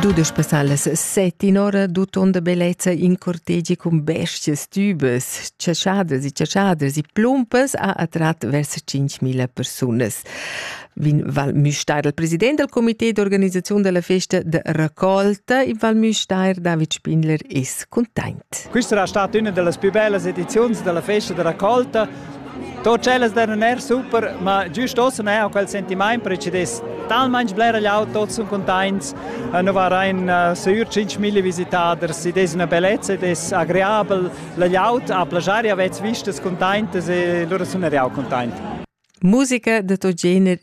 Dudesch passalas set in ora d'utonda bellezza in cortegi cun bestias tubas, chaschaders e chaschaders e plumpas ha attrat vers 5.000 persunas. Vin Val Müstair, il president del comité d'organizzazione della festa de raccolta in Val Müstair, David Spindler, ist content. Questa è stata una delle più belle edizioni della festa de raccolta To tschellas da non er super, ma giust ossa ne ho quel sentimaint precedess talmainch bler gliaut tots sun containts, nu varain uh, sür 5.000 visitaders, id es üna bellezza ed es agreabel, la gliaut a plagiari avets vistas containtas e lura sun er eau containt. Musica da to gener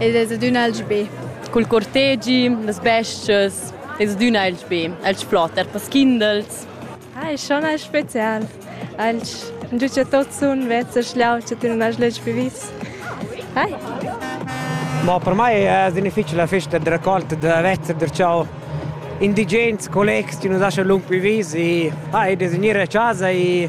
Ed es adüna alch be. Cul cortegi, las bes-chas, es adüna alch be, alch flot, eir pels kindels. Ah, es schon alch special. Alch giü cha tuots sun vezs a schliau cha tüna ais lej pi vis. Hai! Mo per mai es difficil la festa da raccolta da vezzer da ciao indigens, collegs chi nu lascian lung pi vis e ah, e designir la casa e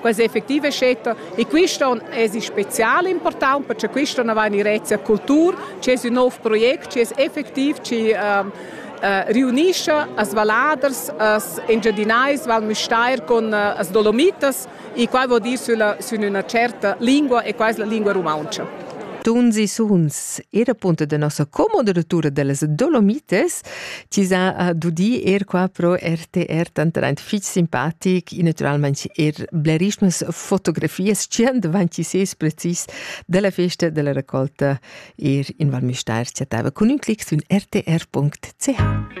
quasi effettiva è scetta e questo es spezial important perché questo non va in direzia cultura c'è un nuovo progetto che è effettiv ci ehm, eh, riunisce as valaders, as engiadinais val Müstair con eh, as dolomitas e qua vuol dire sulla, su una certa lingua e quasi la lingua rumantscha. Tunzi Suns era punto de nossa commoderatura de las Dolomites Ti sa uh, dudi er qua pro RTR tanteraint fich simpatic, e naturalmente er blerissimas fotografias, cient avanti ses precis della festa della raccolta er in Val Mistair chattava cun un clic su rtr.ch.